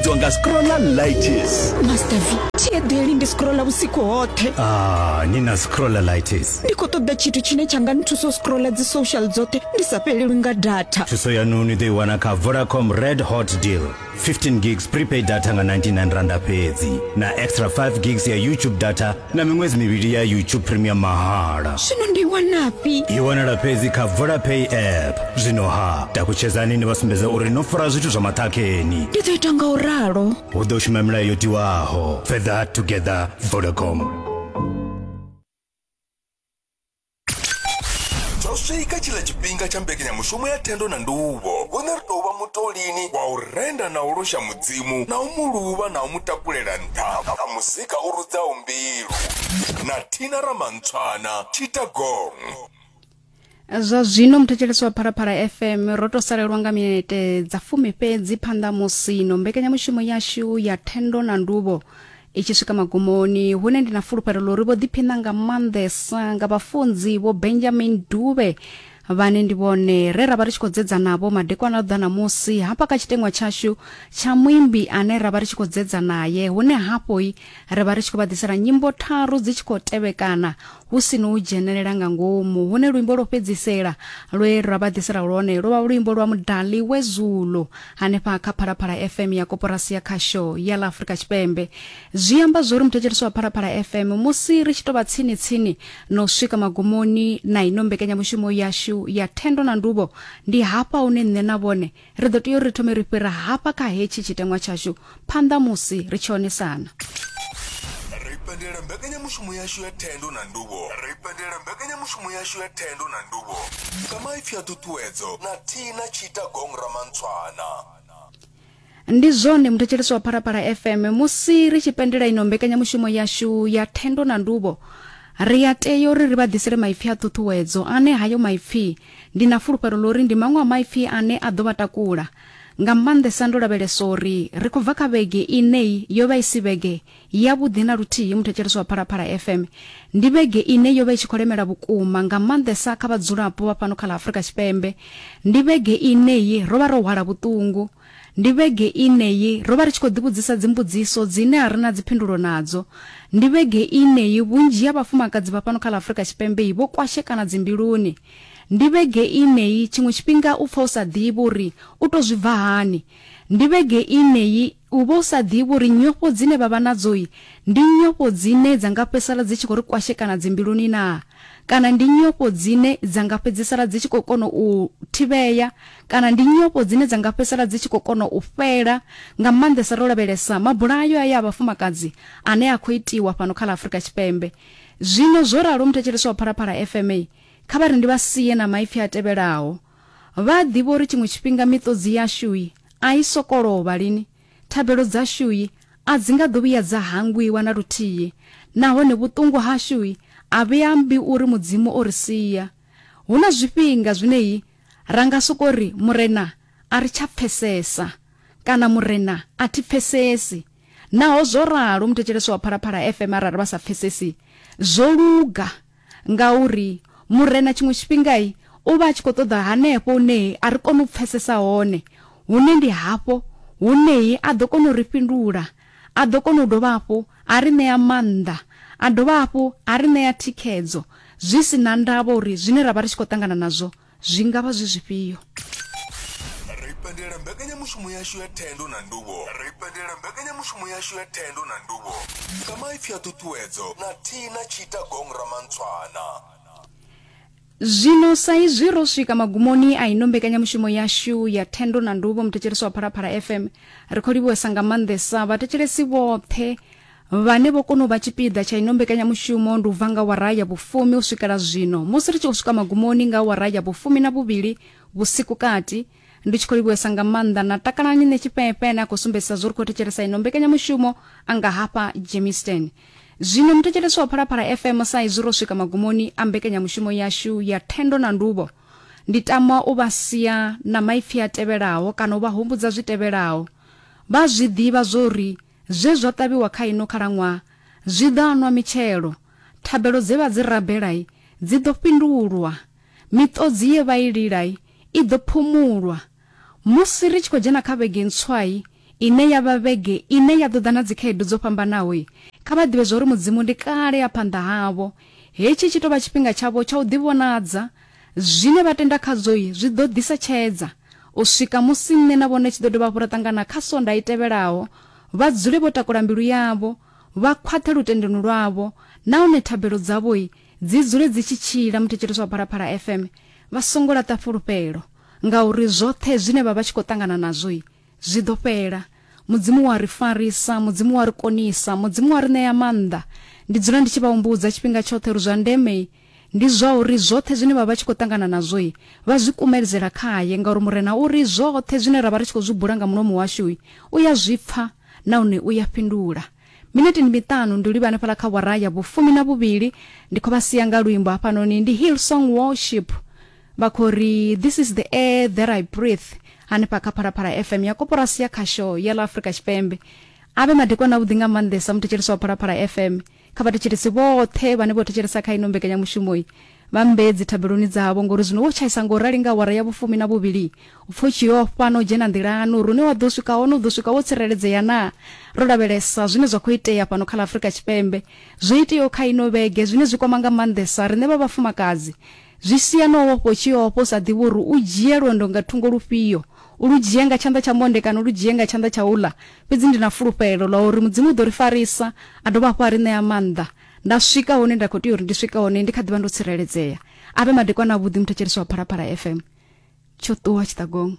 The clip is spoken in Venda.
itiwa nga scrolla lights master v tshiedeli ndi scrolla vhusiku hoṱhe ah ni na scrolla lights ndi khou ṱoḓa tshithu tshine tsha nga nthusa u scrolla dzi social dzoṱhe ndi sa fhelelwi nga data thuso yanu ni ḓo i wana kha vodacom red hot deal 15 gigs prepaid data nga 99 randa fhedzi na extra 5 gigs ya youtube data na miṅwedzi mivhili ya youtube premium mahala zwino ndi wanafhi i wanala fhedzi kha vodapay app zwino ha takutshedzani ni vha sumbedza uri no fara zwithu zwa maṱhakheni ndi ḓo ita nga u ralo hu ḓo shuma milayo yo tiwaho further together vodacom zwo swika tshiḽa tshifhinga tsha mbekanyamushumo ya thendo na nduvho hune ri tou vha mutolini wa u renda na u losha mudzimu na u mu luvha na u mu takulela nṱha nga muzika u rudzaho mbilu na thina ramantshwana tshita gong zwa zwino muthetshelesi wa phalaphala fm ro to salelwa nga minete dza fumi fhedzi phanḓa musino mbekanyamushumo yashu ya thendo na nduvho i tshi swika magumoni hune ndi na fulufhelo ḽa uri vho ḓiphiṋa nga maanḓesa nga vhafunzi vho benjamin dube vhane ndi vhone re ra vha ri tshi khou dzedza navho madekwana a ḓa namusi hafha kha tshiteṅwa tshashu tsha muimbi ane ra vha ri tshi khou dzedza naye hune hafhoi ri vha ri tshi khou vha ḓisela nyimbo tharu dzi tshi khou tevhekana hu si no u dzhenelela nga ngomu hune luimbo lwo fhedzisela lwe ra vha ḓisela lwone lwo vha luimbo lwa mudali we zulo hanefha kha phalaphala fm ya koporasi ya khasho ya ḽa afurika tshipembe zwi amba zwori muthetshelesi wa phalaphala fm musi ri tshi tou vha tsini tsini no swika magumoni na ino mbekanyamushumo yashu ya thendo na nduvho ndi hafha hune nṋe na vhone Ri ḓo tea uri ri thome ri fhira hafha kha hetshi tshiteṅwa tshashu phanḓa musi ri tshi onesana. Ri pendela mbekanyamushumo yashu ya thendo na nduvho. Ri pendela mbekanyamushumo yashu ya thendo na nduvho nga maipfi a ṱhuṱhuwedzo na Tina Tshita Gong Ramantshwana. Ndi zwone muthetshelesi wa Phalaphala FM, musi ri tshi pendela ino mbekanyamushumo yashu ya thendo na nduvho, ri a tea uri ri vha ḓisele maipfi a ṱhuṱhuwedzo ane hayo maipfi Ndi na fulufhelo ḽa uri ndi maṅwe a maipfi ane a ḓo vha takula, nga maanḓesa ndo lavhelesa uri ri khou bva kha vhege ine yo vha i si vhege yavhuḓi na luthihi muthetshelesi wa Phalaphala FM. Ndi vhege ine yo vha i tshi khou lemela vhukuma, nga maanḓesa kha vhadzulapo vha fhano kha ḽa Afrika Tshipembe. Ndi vhege ine ro vha ro hwala vhuṱungu. Ndi vhege ine yi ro vha ri tshi khou ḓivhudzisa dzimbudziso dzine a ri na dziphindulo nadzo. Ndi vhege ine yi vhunzhi ha vhafumakadzi vha fhano kha ḽa Afrika Tshipembe yi vho kwashekana dzimbiluni. Ndi vhege ine yi tshiṅwe tshifhinga u pfa u sa ḓivhi uri u tou zwi bva hani. Ndi vhege ine yi u vha u sa ḓivhi uri nyofho dzine vha vha nadzo yi ndi nyofho dzine dza nga fhedzisala dzi tshi khou ri kwashekana dzimbiluni naa? Kana ndi nyofho dzine dza nga fhedzisala dzi tshi khou kona u thivhea Kana ndi nyofho dzine dza nga fhedzisela dzi tshi khou kona u fhela, nga maanḓesa ro lavhelesa mabulayo aya a vhafumakadzi ane a khou itiwa fhano kha ḽa Afrika Tshipembe zwino. Zwo ralo, muthetshelesi wa Phalaphala FM kha vha ri ndi vha sie na maipfi a tevhelaho, Vha a ḓivha uri tshiṅwe tshifhinga miṱodzi yashui a i sokou lovha lini, thabelo dzashui a dzi nga ḓo vhuya dza hangwiwa na luthihi, nahone vhuṱungu hashui a vhi ambi uri Mudzimu o ri sia. Hu na zwifhinga zwine Ra nga sokou ri, Murena, a ri tsha pfesesa, kana Murena, a thi pfesesi. Naho zwo ralo, muthetsheleswa wa Phalaphala FM arali vha sa pfesesi, zwo luga, ngauri Murena tshiṅwe tshifhinga u vha a tshi khou ṱoḓa hanefho hune a ri koni u pfesesa hone, hune ndi hafho hune a ḓo kona u ri fhindula A ḓo kona u dovha hafhu a ri ṋea maanḓa, a dovha hafhu a ri ṋea thikhedzo zwi si na ndavha uri zwine ra vha ri tshi khou ṱangana nazwo zwi nga vha zwi zwifhio. Ri pendela mbekanyamushumo yashu ya thendo na nduvho. Ri pendela mbekanyamushumo yashu ya thendo na nduvho nga maipfi a ṱhuṱhuwedzo na thihi na tshiita gong Ramantshwana. Zwino sa izwi ro swika magumoni a ino mbekanyamushumo yashu ya Thendo na Nduvho muthetshelesi wa Phalaphala FM, ri khou livhuwesa nga maanḓesa vhathetshelesi vhoṱhe vhane vho kona u vha tshipiḓa tsha ino mbekanyamushumo ndi u bva nga awara ya vhufumi u swikela zwino. Musi ri tshi khou swika magumoni nga awara ya vhufumi na vhuvhili vhusiku kati, ndi tshi khou livhuesa nga maanḓa na takalani ne tshifheefhe ane a khou sumbedzisa zwo ri khou thetshelesa ino mbekanyamushumo a nga hafha jemisten zwino muthetshelesi wa phalaphala fm sa izwi ro swika magumoni a mbekanyamushumo yashu ya thendo na nduvho ndi tama u vha sia na maipfi a tevhelaho kana u vha humbudza zwi tevhelaho vha zwi ḓivha zwo ri zwe zwa ṱavhiwa kha ino khalaṅwaha zwi ḓo anwa mitshelo thabelo dze vha dzi rabelai dzi ḓo fhindulwa Miṱodzi ye vha i lila i ḓo phumulwa. Musi ri tshi khou dzhena kha vhege ntswa ine ya vha vhege ine ya ḓo ḓa na dzikhaedu dzo fhambanaho, kha vha ḓivhe zwa uri Mudzimu ndi kale a phanḓa havho. Hetshi tshi tou vha tshifhinga tshavho tsha u ḓivhonadza. Zwine vha tenda khazwo zwi ḓo ḓisa tshedza u swika musi nṋe na vhone tshi ḓo dovha hafhu ra ṱangana kha Sondaha i tevhelaho. Vha dzule vho takula mbilu yavho, vha khwaṱhe lutendoni lwavho nahone thabelo dzavho Dzi dzule dzi tshi tshila muthetshelesi wa Phalaphala FM vha songo laṱa fhulufhelo ngauri zwoṱhe zwine vha vha tshi khou ṱangana nazwo zwi ḓo fhela mudzimu wa ri farisa mudzimu wa ri konisa mudzimu wa ri ṋea maanḓa ndi dzula ndi tshi vha humbudza tshifhinga tshoṱhe uri zwa ndeme ndi zwa uri zwoṱhe zwine vha vha tshi khou ṱangana nazwo vha zwi kumelizela khaye ngauri murena uri zwoṱhe zwine ra vha ri tshi khou zwi bula nga mulomo washu u ya zwi pfa nahone u ya fhindula Minete ndi miṱanu ndi livha hanefhala kha wara ya vhufumi na vhuvhili ndi khou vha sia nga luimbo hafhanoni ndi Hillsong Worship vha khou ri this is the air that I breathe hanefha kha Phalaphala FM ya koporasi ya khasho ya ḽa Afrika Tshipembe avhe madekwana avhuḓi nga maanḓesa muthetshelesi wa Phalaphala FM kha vhathetshelesi vhoṱhe vhane vho thetshelesa kha ino mbekanyamushumo Vha mmbee dzithabeloni dzavho, ngori zwino wo tshaisa nga u rali nga awara ya vhufumi na vhuvhili. U pfa u tshi yo ofha na u dzhena nḓilani uri hune wa ḓo swika hone u ḓo swika wo tsireledzea naa? Ro lavhelesa zwine zwa khou itea fhano kha ḽa Afrika Tshipembe, zwo iteaho kha ino vhege zwine zwi kwama nga maanḓesa riṋe vha vhafumakadzi. Zwi sia na u ofha u tshi yo ofha u sa ḓivhi uri u dzhie lwendo nga thungo lufhio, u lu dzhie nga tshanḓa tsha monde kana u lu dzhie nga tshanḓa tsha uḽa. Fhedzi ndi na fulufhelo ḽa uri Mudzimu u ḓo ri farisa a dovha hafhu a ri ṋea maanḓa. Nda swika hune nda khou tea uri ndi swike hone ndi kha ḓivha ndo tsireledzea. A vhe madekwana avhuḓi muthetshelesi wa Phalaphala FM. Tsho ṱuwa tshiṱagongo.